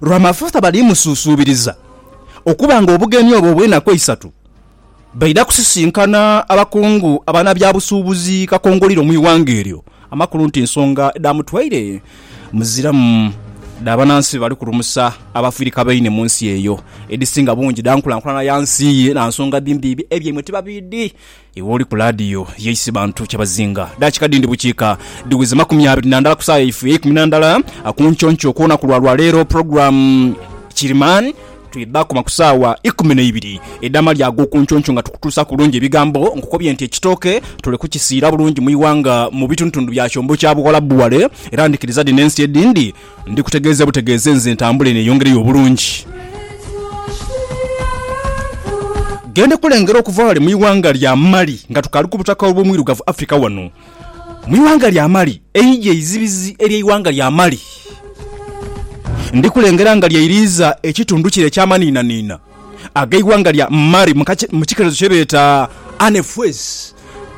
Rwamafutha bali musuusuubiriza okuba ng'obugenyi obwo obw'enaku eisatu baidha kusisinkana abakungu abanabyabusuubuzi kakongoliro mu ighanga eryo. Amakulu nti ensonga edhamutwaire muziramu dha banansi bali kulumusa abafirika baine mu nsi eyo edhisinga bungi dha nkulankulana ya nsi ye na nsonga dhimbiibi ebyaimwe tibabiidhi. Iwe oli ku laadiyo ye Isibantu Kyabazinga. Daakika dhindi bukiika dhiweze makumi abiri na ndala ku saagha yaife eyeikumi na ndala ku nkyo nkyo ku lunaku lwa lwa leero. Pulogulaamu Kiriman twidha dhaakoma ku saagha ikumi na ibiri edh'amalya ag'oku nkyo nkyo nga tukutuusaaku bulungi ebigambo nkukobye nti ekitooke tuli kukisiira bulungi mu ighanga mu bitundutundu bya kyombo kya Buwalabu Wale era ndhikiriza dhi n'ensi edhindi Ndi kutegeeze butegeeze nze ntambule neyongereyo obulungi. Gende kulengera okuva ghale mu ighanga lya Mali nga tukaali ku butaka obw'omwirugavu Africa wano mu ighanga lya Mali. Eidhi eizibizi ery'eighanga lya Mali. Ndi kulengera nga lyeiriiza ekitundu kire eky'amaniinaniina. ag'eighanga lya Mali mu kikerezo kye beeta Anefuez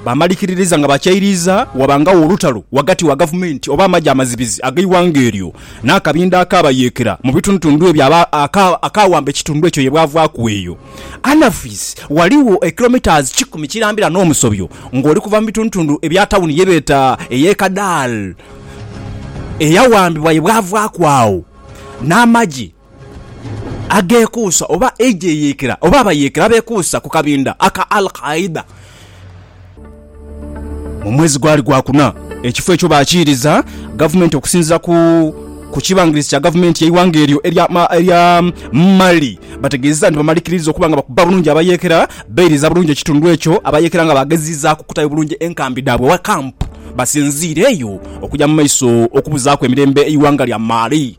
baamalikiririza nga bakyairiiza wabangagho olutalo ghagati wa gavumenti oba amagye amazibizi ag'eighanga eryo n'akabinda akaabayeekera mu bitundutundu ebyo akaawamba ekitundu ekyo ye bwavaaku eyo Anefuez ghaligho kilometres kikumi kirambira n'omusobyo ng'oli kuva mu bitundutundu ebya tawuni ye beeta ey'e Kadal eyawambibwa ye bwavaaku agho n'amagye ageekuusa oba eidhi eyeekera oba abayeekera abeekuusa ku kabinda aka al-Qaeda mu mwezi gwali gwakuna. Ekifo ekyo baakiiriza gavumenti okusinziira ku kibangirizi kya gavumenti y'eighanga eryo erya Mali. Bategeezezza nti bamalikirirza okuba nga bakuba bulungi abayeekera, bairiza bulungi ekitundu ekyo, abayeekera nga baagezezaaku okutayo bulungi enkambi dhaabwe oba camp basinziireyo okugya mu maiso okubuzaaku emirembe eighanga lya Mali.